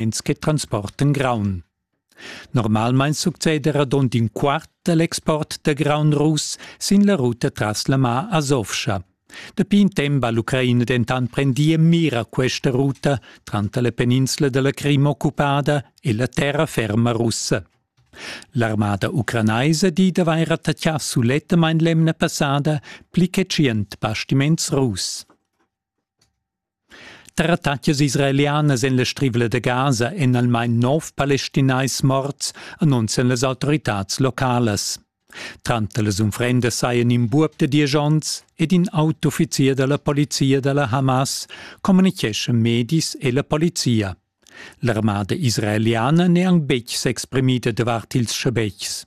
ins che transporten graun. Normalmein succeda radund in quart dall'export da graun russ sin la ruta tras la mar Azovscha. Dapi in tempo ha l'Ucraina dentant prendì en mira questa ruta tranter la peninsula della Crim occupada e la terra ferma russa. L'armada ucranaisa di d'avair attaccà sulettamain l'emna passada pli che tschient bastiments russ. Trattaglias israelianas en la Strivla da Gaza èn almain nov palestinais morts, annunzian las autoritads localas. Tranter las unfrendas sajan in buob da diesch onns ed in autouffizier da la polizia da la Hamas, communitgescha medis e la polizia. L'armada israeliana n'è anc betg s'exprimida davart ils schabetgs.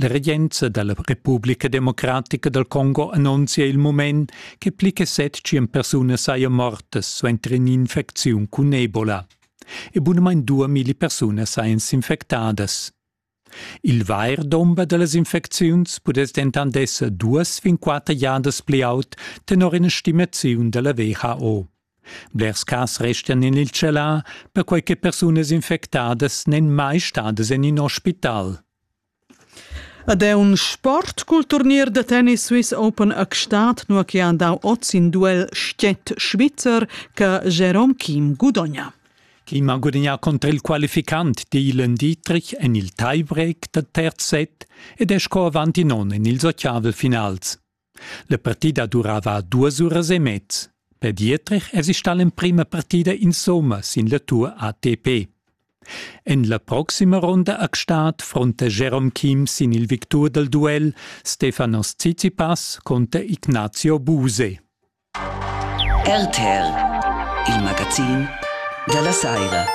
La regenza da la Republica democratica dal Congo annunzia il mument che pli che set tschient persunas sajan mortas suenter in'infecziun cun Ebola e bunamain duamilli persunas sajan s'infectadas. Il vair dumber da las infecziuns pudess dentant esser duas fin quatter giadas pli aut tenor ina stimaziun da la WHO. Blers cas restian en il tschelà, perquai che persunas infectadas n'èn mai stadas en in ospital. Ed è un sport cul turnier da tennis Swiss Open a Gstaad, nua che han dau oz in duel stiet-svizzer che Jerome Kim gudogna. Kim ha gudagnà contro il qualificant Dylan Dietrich en il tiebreak da terz set ed è sco avanti non in ils otgavel finals. La partida durava duas uras e mez. Per Dietrich èsi stà l'emprima partida insomma sin la tur ATP. En la proxima ronda a Gstaad fronta Jerome Kim sin il victur dal duel Stefanos Tsitsipas conter Ignazio Buse. RTL, il magazin dalla saira.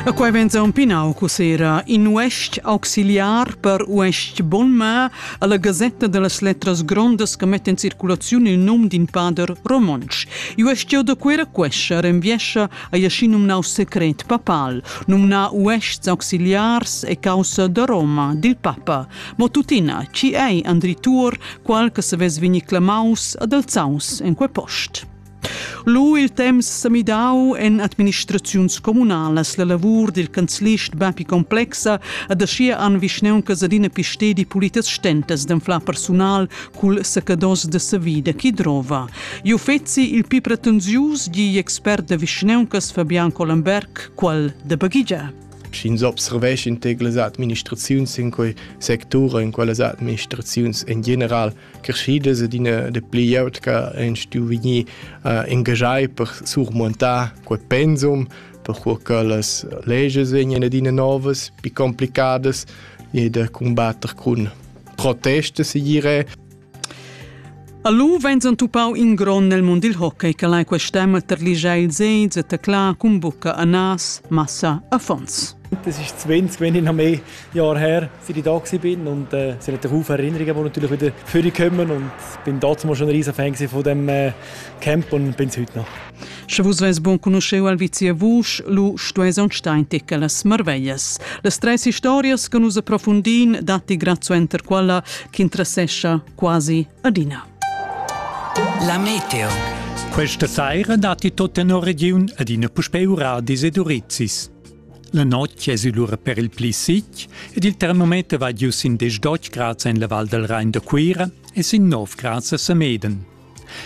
E quai venza un pinau cosera in uest auxiliar per uest Bolma alla Gazetta delle Letras Grondas che mette in circolazione il nome d'un pader romonsch. Uest jau da quera quescha renviescia a jasci numnau secret papal, numna uests auxiliars e causa da Roma, dil papa. Mo tuttina, chi ei Andri Tuor, qual che se vess vegni clamaus ad alzaus en quei post? Lu il temps sa midau en administraziuns communalas la lavur dil canzlist Bapi Complexa ad aschia an vischneunca adina pistedi pulitas stentas d'anflar personal cul sacados de savida chi drova. Iu fetzi il pi pretensius, di expert da vischneuncas Fabian Collenberg, qual de baghigia. sch'ins observescha in tec las administraziuns in quei sectur in quelles administraziuns in general creschidas ed ina de pli glieud che ein stuu vegnir uh, engagai per surmontar quei pensum per cui che las leges vegnan adina novas, più complicadas e da combattere con proteste, si dire. A lu vegn entupau in gron nel mund dil hockey che lai quest'emma terligiar ils egls e teclar cun bucca anas, massa, affons. Das ist 20, wenn ich noch mehr Jahre her für die da bin und äh, sie haben Haufen Erinnerungen, die natürlich wieder vorkommen und bin damals schon ein riesen Fan von dem äh, Camp und bin es heute noch. Sche vus veis bun conoscheu Alvizia Vusch, lu stueis aunc star in tic las marveglias. Las treis historias che nus approfundin datti grazuenter quella ch'interessescha quasi adina. La Meteo. Questa sera datti tutta una region ad una puspeura di Sedurizis. La notte è lura per il pli sic ed il termometer va giù in 10 grad en la Val del Rhein da Cuira e sin 9 grad a Sameden.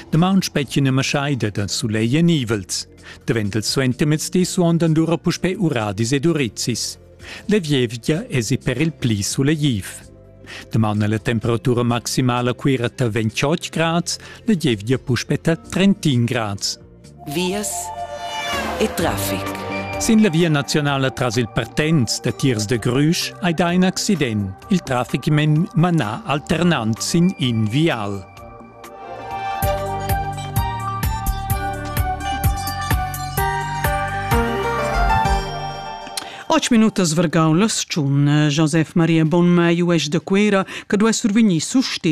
Damaun spetgien e maschaida da sulegl e nivels. Davent il suentermezdi suondan dura puspè uradis ed urizis. La vievgia esi per il pli sulegliv. Damaun la temperatura maximala cuira ta 28 grads, la gievgia puspè ta 31 grads. vias e traffic. Sin la via nazionala tras il Partenz da tiers de Grüsch hai dà in accident, il traffic manà alternant sin in vial. Ocho minutas vargau las tschun. Josef Maria Bonmai uesch de Quera che duei survegnir sustegn